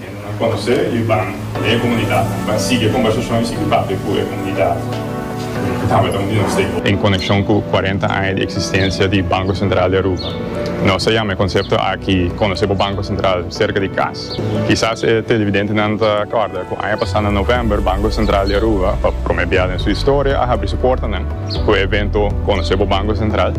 Nan a konosé i ban na e komunidat. Nan ban sigui e kombersashon i sigui papia ku e komunidat ku tabata un di nos stakeholders. En konekshon ku kuarenta aña di eksistensia di Banko Sentral di Aruba, nos a yama e konsepto aki Konosé bo Banko Sentral serka di kas. Kisas e televidentenan ta kòrda ku aña pasá na novèmber Banko Sentral di Aruba, pa promé bia den su historia, a habri su portanan ku e evento Konosé bo Banko Sentral.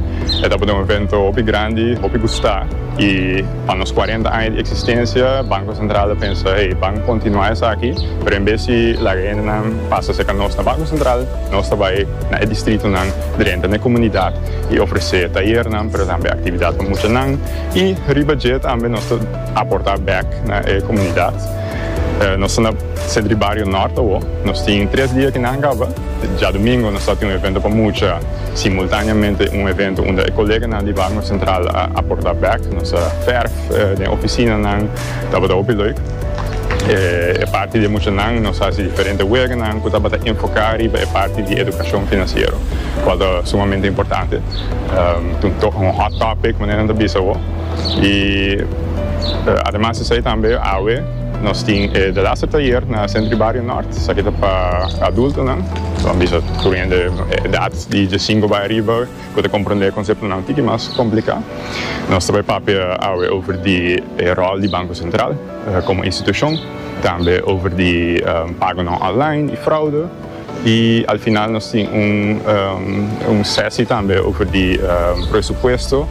E tabata un evento hopi grandi, hopi gustá i. Pa nos cuarenta aña di existencia Banco Central a pensa hey ban continua esaki pero en bes di laga hendenan pasa cerca nos na Banco Central nos ta bay na e distritonan drenta n'e comunidad y ofrece tayernan pero tambe actividad pa muchanan y riba dje tambe nos ta aporta bek na e comunidad. Nos ta na Centro di Bario Norte awo nos tin tres dia ki nan caba djadomingo nos ta tin un evento pa mucha Simultaneamente un evento unda e koleganan di Barnum Central a aporta bek, nos a ferf den oficinanan, tabata hopi leuk. E parti di e muchanan nos hasi diferente weganan cu tabata enfoca riba e parti di educacion financiero, cual ta sumamente importante. Ta un hot topic manera nan ta bisa awo. Y ademas esey tambe awe nos tin e The Laster Tayer na Centro y Barrio Nort, esaki ta pa adultonan. Lo han bisa tur hende edat di di sinku bai ariba ku ta komprondé e konseptonan tiki mas kompliká. Nos ta bai papia awe over di e ròl di Banko Sentral komo institushon, tambe over di pagonan online i fraude, i al final nos tin un sesi tambe over di presupuesto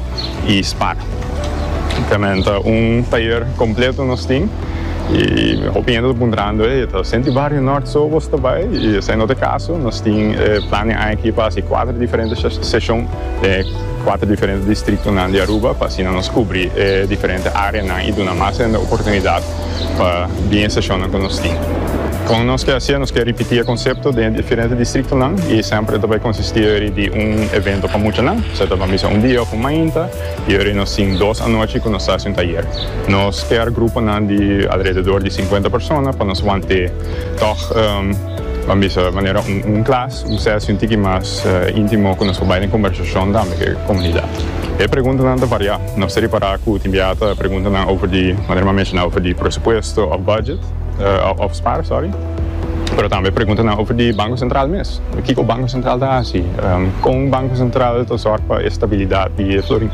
i spar. Tambe ta un tayer kompleto nos tin. I hopi hende ta puntrando, Ey, ta senti bario Nort so bos ta bai? I esei no ta e kaso. Nos tin e plan den aña aki pa hasi kuater diferente seshon den e kuater diferente distriktonan di Aruba pa asina nos kubri e diferente áreanan i duna mas hende oportunidat pa bin e seshonnan ku nos tin. Kon nos ke hasié? Nos ke ripití e konsepto den e diferente distriktonan i sèmper ta bai konsistí di un evento pa muchanan, sea ta ban bisa un dia òf un mainta. Yori nos tin dos anochi ku nos ta hasi un tayer. Nos skèr gruponan di alrededor di sinkuenta persona pa nos want'é tòg, ban bisa manera un klas, un sèsi un tiki mas íntimo ku nos por bai den kombersashon tambe ku e komunidat. E preguntanan ta variá. Nos ta ripará ku tin biaha ta preguntanan over di, manera mi a menshoná, over di presupuesto òf bùdjet, òf spar, sòri. Pero tambe pregunta nan over di Banco Central mes. Kico Banco Central ta haci? Con Banco Central ta zorg pa e stabilidad di e florin?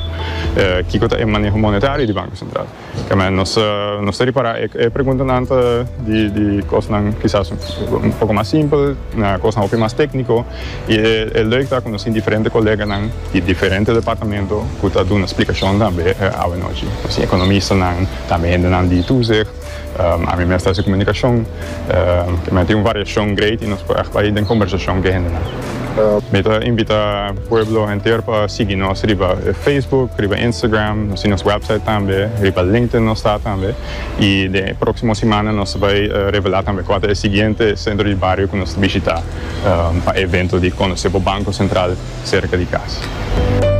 Kico ta e maneho monetario di Banco Central? Kema nos ta ripara e preguntanan ta di cosnan kisas un poco mas simpel na cosnan hopi mas tecnico y e leuk ta cu nos tin diferente coleganan di diferente departamento cu ta duna splicacion tambe awe nochi. Nos tin economistanan, tambe hendenan di toezicht. Ami mes ta hasi komunikashon, k'e men tin un variashon great i nos por ègt bai den kombersashon k'e hende nan. Mi ta invitá pueblo henter pa sigui nos riba Facebook, riba Instagram, nos tin nos wèpsait tambe, riba LinkedIn nos ta tambe, i den e próksimo simana nos ta bai revelá tambe kua ta e siguiente sentro di bario ku nos ta bishitá pa e evento di Konosé bo Banko Sentral serka di kas.